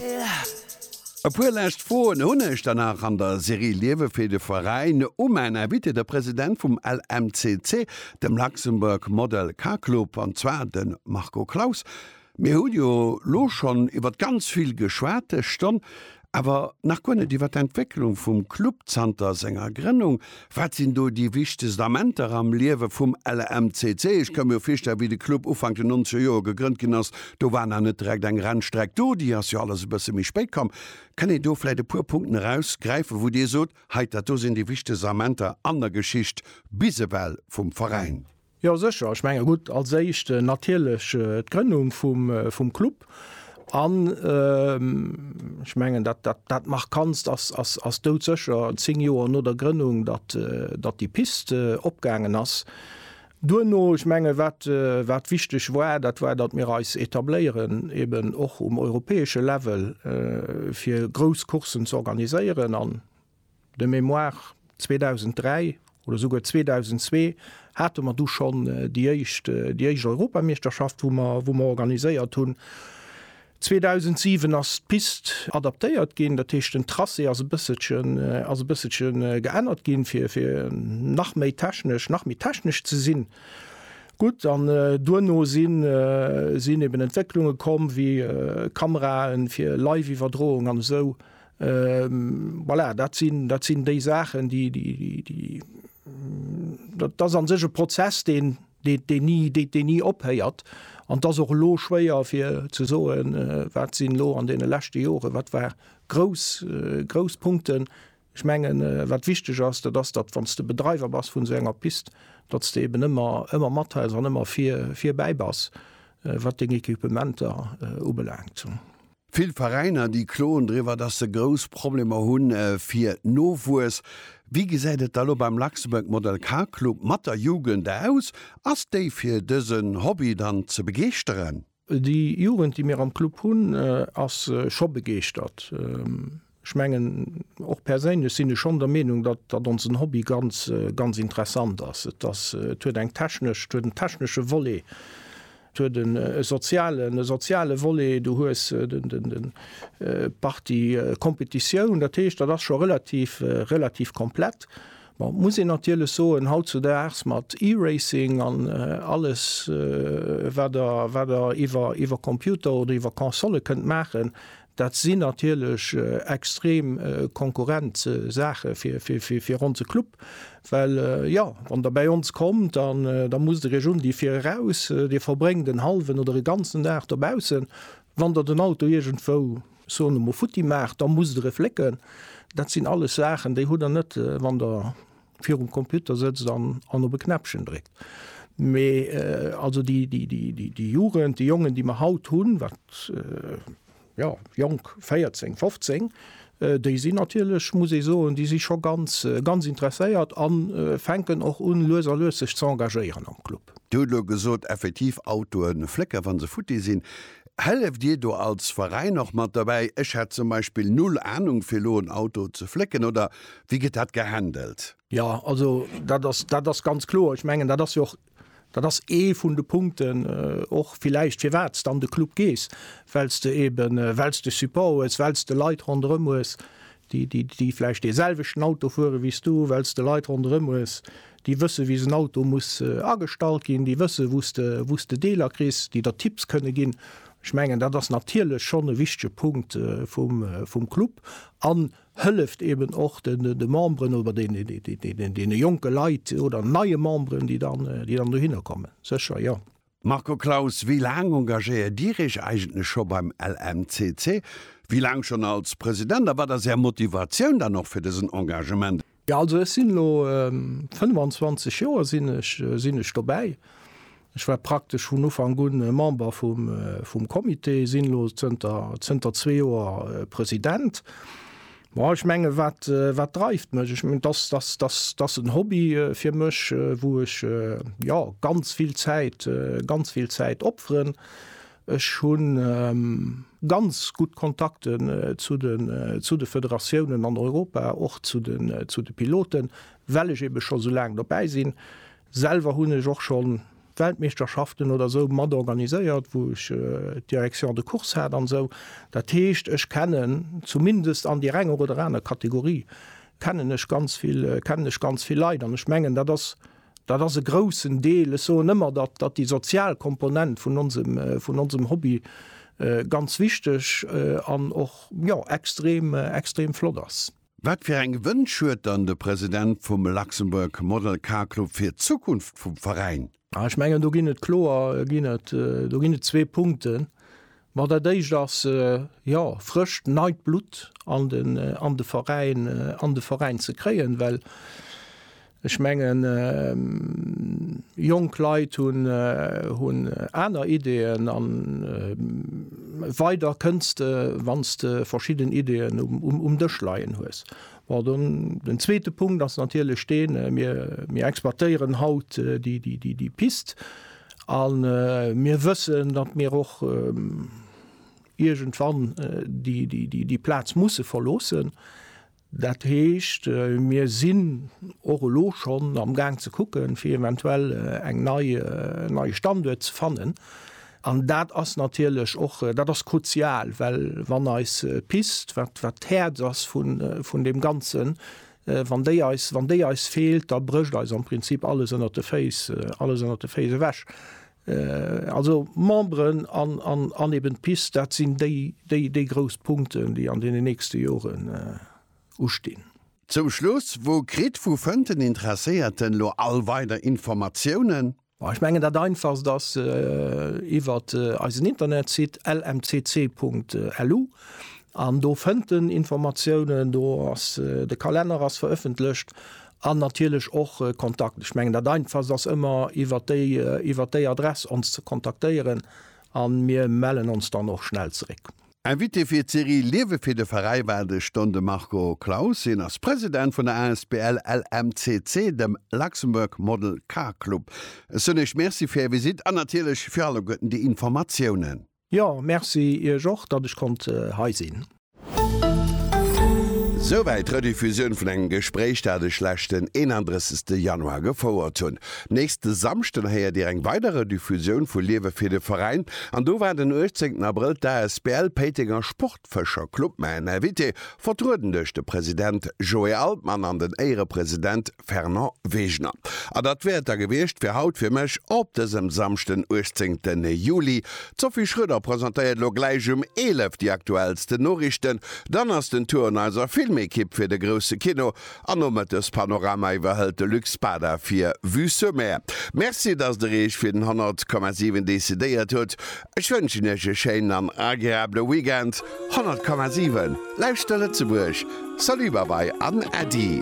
E puer lescht Froen hunn ech der nach an der Serie Liewe fir de Veräin u mäin Invité, de President vum LMCC, dem Luxembourg Model Car Club, an zwar de Marco Claus. Mir hu jo lo schonn iwwert ganz vill geschwat dës Stonn, awer nach guer net iwwert d'Entwécklung vum Club zanter senger Grënnung. Wat sinn do déi wichtegst Amenter am Liewe vum LAMCC? Ech ka mir virstellen, wéi de Club Ufank den nonzeger Joer gegrënnt ginn ass, do war nach net direkt eng Rennstreck do, déi ass jo alles e bësse méi spéit komm. Kënnt Dir do vläicht e puer Punkten erausgräifen, wou Dir sot, hei, dat do sinn déi wichtegst Amenter an der Geschicht bis ewell vum Veräin? Jo sécher, ech menge gutt, als éischt natierlech d'Grënnung vum Club an ech mengen dat dat markantst ass doudsécher 10 Joer no der Grënnung, datt datt déi Piste opgaangen ass. Duerno, ech menge wat wat wichteg war, dat war datt mir eis etabléieren eben och um europäesche Level fir grouss Courssen z'organiséieren an De Mémoire 2003 oder esouguer 2002 hate mer du schonn déi éischt, déi éischt Europameeschterschaft, wou mer, wou mer organiséiert hunn. 2007 ass d'Pist adaptéiert ginn, dat heescht den Tracé ass e bësselchen, ass e bësselche geännert ginn, fir, fir nach méi technesch, nach méi technesch ze sinn. Gutt, an duerno sinn, sinn eben Entwécklunge komm wéi Kamerae fir Live-Iwwerdroung an esou Voilà, dat sinn, dat sinn déi Saachen, déi, déi, déi, déi dat, dat an sech e Prozess, den, den, den nie, den, den nie ophéiert. An dass och lo schwéier fir ze soen, äh, wat sinn lo an deene leschte Jore, wat war grouss, äh, grouss Punkten. Ech mengen, äh, wat wichteg ass, dat ass, datt, wann s de Bedreiwer bass vun esou enger Pist, datt s de eben ëmmer, ëmmer mathels an ëmmer vir, virbäi bass, äh, wat deng Equipementer, äh, ubelaangt. Vill Veräiner, déi kloen driwwer, dass se grouss Problemer hu fir Nowuess. Wéi gesäit et da lo beim Luxembourg Model Car Club mat der Jugend aus? Ass déi fir dësen Hobby dann ze begeeschteren? Déi Jugend, déi mir am Club hunn, ass scho begeeschtert. Ech mengen, och perséinlech sinn ech schonn der Meenung, datt, datt onsen Hobby ganz, ganz interessant ass. Et ass, et huet eng technesch, et huet en technesche Volet, et huet en, e sozialen, e soziale Volet, du hues den, den, den, d'Partie Kompetitioun. Dat heescht, dat ass scho relativ, relativ komplett. Bon, et muss een natierlech soen, hautzudaags mat E-Racing an alles, wat der, wat der iwwer, iwwer Computer oder iwwer Konsole kënnt maachen, Dat sinn natierlech extrem konkurrent Saache fir onse Club, well, jo, wann Der bäi ons kommt, da musst Der Iech un déi vir eraus, Dir verbréngt en hallwen oder e ganzen Dag dobaussen. Wann Der den Auto iergendwou, soen ech mol, futti maacht, da musst Der e flécken. Dat sinn alles Saachen, déi hutt Der net, wann Der virum Computer sëtzt an, an op e Knäppchen dréckt. Mee äh, also déi, déi, déi, déi, déi Jugend, déi Jongen, déi mer haut hunn, wat äh, ja, jonk 14, 15, äh, déi sinn natierlech, muss ee soen, déi si scho ganz, äh, ganz interesséiert an äh, fänken och un, lues a lues sech ze engagéieren am Club. Dir hutt elo gesot, effektiv Autoen flécken, wa se futti sinn. Hëlleft Dir do als Veräin och mat dobäi? Ech hätt zum Beispill null Anung, fir elo en Auto ze flécken. Oder Wéi gëtt dat gehandelt? Jo, also dat ass, dat ass ganz kloer. Ech mengen, dat ass jo och, dat ass ee vun de Punkten och villäicht, firwat s de an de Club gees, well s de eeben, well s de Support hues, well s de Leit ronderëm hues, déi, déi, déi vläicht deeselwechten Auto fuere wéi s du, well s de Leit ronderëm hues, déi wësse wéi esou en Auto muss agestallt ginn, déi wësse wou s de, wou s de Deeler kriss, déi der Tipps kënne ginn. Ech mengen, dat ass natierlech schonn e wichtege Punkt vum, vum Club an hëlleft eben och de Memberen oder deene jonke Leit oder neie Memberen, déi dann dohinner kommen, sécher, jo. Marco Claus, Wéi laang engagéiert Dir Iech eigentlech scho beim LMCC? Wéi laang schonn als President? A wat ass Är Motivatioun dann och fir dësen Engagement? Jo also ech sinn elo 25 Joer sinn ech sinn ech dobäi. Ech war praktesch vun Ufank un Member vum Comité, sinn elo zënter zënter zwee Joer President. Bon ech menge wat wat dreift mech? Ech mengen dass dass dass dass en Hobby fir mech wou ech jo ganz vill Zäit ganz vill Zäit opferen. Ech hu ganz gutt Kontakten zu de Federatiounen an Europa, och zu de Piloten, well ech eebe scho sou laang dobäi sinn. Selwer hunn ech och scho Weltmeeschterschaften oder sou mat organiséiert, wou ech d'Direction de course hat an esou. Dat heescht, ech kennen zumindest an deer enger oder aner Kategorie kennen ech ganz vill Leit an ech mengen, dat ass Dat ass e groussen Deel. Ech soen ëmmer, datt déi sozial Komponent vun onsem Hobby ganz wichteg an och extrem flott ass. Wat fir eng Wënsch huet dann de President vum Luxembourg Model Car Club fir d'Zukunft vum Veräin? Ech mengen, do ginn et kloer zwee Punkten, Ma dat éischt ass, jo, frëscht, neit Blutt an de, an de Veräin, an de Veräin ze kréien, well ech mengen, jonk Leit hunn, hunn aner Ideeën a weider kënns de, wann s de verschidden Ideeën um, um Dësch leien hues. Bon, dann den zweete Punkt ass natierlech deen, mir, mir exploitéieren haut déi, déi, déi, déi Pist a mir wëssen, datt mir och iergendwann déi, déi, déi, déi Plaz musse verloossen. Dat heescht, mir sinn och elo schonn amgaang ze kucken, fir eventuell eng nei, en neie Standuert ze fannen. An dat ass natierlech och, dat ass kruzial, well wann eis Pist, wat d'Häerz ass vun deem Ganzen, wann déi eis, wann déi eis feelt, da brécht eis am Prinzip alles ënnert de Féiss, alles ënnert de Féiss ewech. Also Memberen an eben d'Pist, dat sinn déi, déi grouss Punkten, déi an deenen nächste Joren ustinn. Zum Schluss, Wou kritt, wou fënnt den Interesséierten elo all weider Informatiounen? Ech mengen dat einfachst ass iwwer eisen Internetsite lmcc.lu an do fënnt en Informatiounen, do ass de Kalenner ass verëffentlecht an natierlech och Kontakten. Ech mengen dat einfachst ass ëmmer iwwer déi iwwer déi Adress ons ze kontaktéieren a mir mellen ons dann och schnell zeréck. Invité fir d'Serie Liewe fir de Veräi war de Ston de Marco Claus. Hien ass President vun der Asbl LMCC, dem Luxembourg Model Car Club. Ech soen Iech Merci fir Är Visite an natierlech fir alleguerten déi Informatiounen. Jo, Merci Iech och, datt ech konnt hei sinn. Souwäit d'Rediffusioun vun engem Gespréich, dat ech leschten 31 Januar gefouert hunn. Nächste Samschden héiert Dir eng weider Rediffusioun vu Liewe fir de Veräin. An do war den 18 Abrëll d'ASBL Péitenger Sportfëscher Club main Invité, vertrueden duerch de President Joé Altmann an den Éierepresident Fernand Wegener. A datt wär et da gewiescht fir haut fir mech op dësem Samschden 18 Juli. D'Sophie Schröder presentéiert elo gläich um 11 déi aktuellsten Noriichten. Dann ass den Tour un eiser Filmekipp fir de grousse Kino. An Nomëttes Panorama iwwerhëlt de Luc Spada fir Vue sur Mer. Merci dass der Iech fir den 100 Komma 7 decidéiert hutt. Ech wënschen Iech e schéinen an agreabele Weekend. 100 Komma 7, Lauschter Lëtzebuerg! Salut, Babai an Äddi!